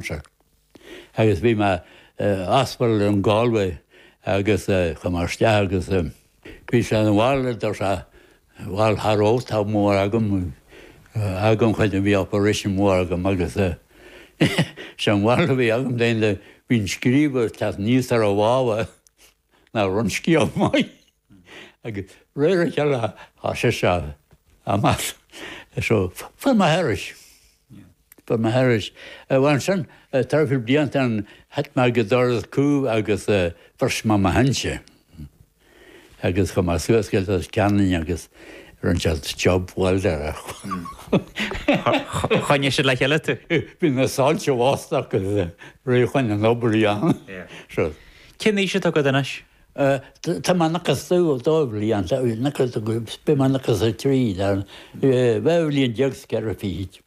Centre agus bhí mé i hospital in Galway agus chuaigh mé isteach agus bhí sé an bhail a deir sé bhail thar ó tá mór agam agam chuid a bhí operation mór agam agus sé an bhail a bhí agam daon de bhí an scriú ag teacht aníos ar a bhábha. Nach raibh an scéal maith? Agus de réir a chéile atá sé seo, a Mhattie. So, fuair mé thairis. Fuair mé thairis. Ansin, tar éis blianta ann, thit mé ag an doras cúil agus bhris mé mo shínte. Agus chuaigh mé suas go Leitir Ceanainn agus rinne siad job welder. Choinnigh siad le chéile tú? Bhí na soilse lasta agus rith chuig an obair ann. Cén aois atá agat anois? Tá mé nócha is a dó, dhá bhliain, tá mé nócha is a dó, beidh mé nócha is a trí san dhá bhliain déag is ceithre fichid.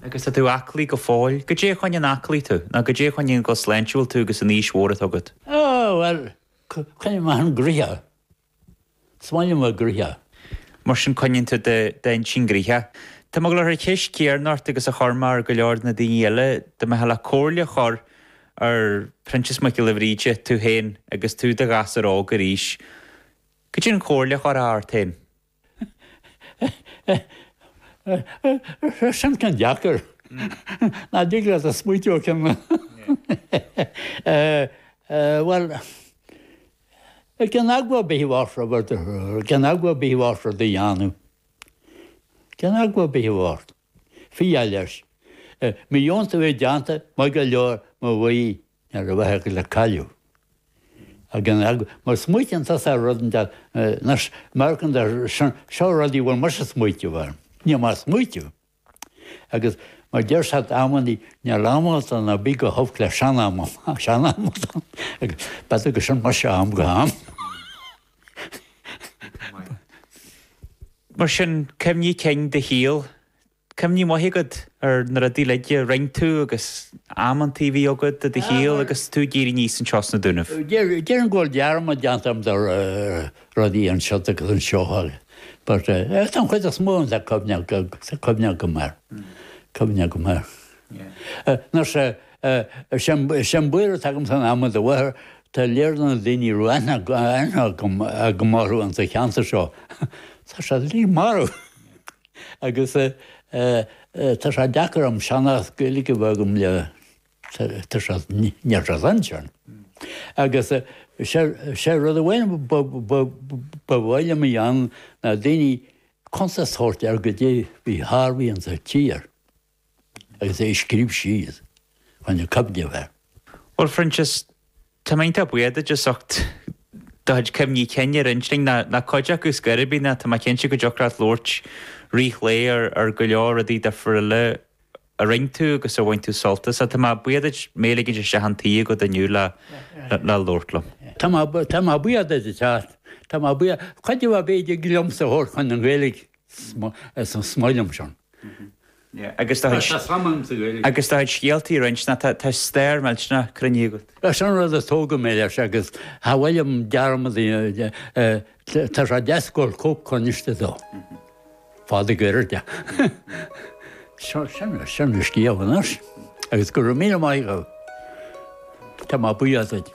Agus tá tú aclaí go fóill. Goidé a choinníonn aclaí tú, nó goidé a choinníonn go sláintiúil tú agus an aois mhór atá agat? Á, bhuel, coinním m'intinn gnoitheach. Smaoineamh ar ghnoithe. Mar sin coinníonn tú d'intinn gnoitheach. Tá mé ag gabháil a chur an cheist chéanna ort agus a chuir mé ar go leor de na daoine eile dá mbeifeá le comhairle a chur ar Proinsias Mac Giolla Bhríde, tú féin agus tú i do ghasúr óg arís. Goidé an chomhairle a chuirfeá ort féin. Á sin ceann deacair. Nach dtig leat smaoiteamh ar cheann? Bhuel. It can agua be water over the It can agua be water do dhéanamh. It can agua be water. Fia leis. Mo dheonta bhí déanta mo go leor mo bhuí nuair a bheadh ag le cailleadh. It can agua. Má smaoitíonn tú sa rud an deas, nurse, American, seo rud a bhfuil muise smaoiteamh orm. Níl mé ag smaoiteamh. Agus mar deir said amannaí, níl am agat ná bí go holc le sean-am, ach sean-am agat ann, agus bead agat sin muis ó am go ham. Mar sin, cuimhní cinn do shaoil. Cuimhne mhaith agat ar na rudaí uilig a rinne tú agus amanntaí a bhí agat i do shaol agus tú ag éirí aníos anseo sna Dúnaibh. Déarfainn go bhfuil dearmad déanta agam de rudaí anseo agus ansiúd but tá an chuid is mó de cuimhne agam air, cuimhne agam air. Mar sé, sé an buaireamh atá agam san am i láthair tá lear de na daoine a raibh aithne agam go maith orthu insa cheantar seo, tá siad uilig marbh agus tá sé deacair orm seanchas Gaeilge a bheith agam le, Tá sé níos dainséaraí. Agus is é rud amháin ba mhaith liom a dhéanamh ná daoine, cuntas a thabhairt ar goidé bhí Harvey ins an tír agus é a scríobh síos chun a choinneáil air. Bhuel, Phroinsias, Tá mé iontach buíoch duit as ucht do chuid cuimhní cinn a roinnt linn, nó cuid acu ar scor ar bith, nó tá mé cinnte go dtiocfadh leat labhairt fríd a chéile ar go leor rudaí duifriúil eile a rinne tú agus ar bhain tú sult as. Tá mé buíoch duit mé ligint isteach an toigh agat inniu le labhairt liom. Tá mé tá mé buíoch duit a Chat, tá mé buíoch, cuid de bheith b'fhéidir liomsa a thabhairt chun an Ghaeilge is an smaoineamh san. Agus do chuid scéaltaí a roinnt, nó tá stair millteanach cruinn agat. Sin an rud a tógadh mé leis agus chan fhuil agam dearmad a dhéanamh de, tá sé deas go bhfuil cóip coinnithe dó. Fada goirid de. Seo, sin é, sin an scéal anois. Agus go raibh míle maith agat. Tá mé buíoch duit.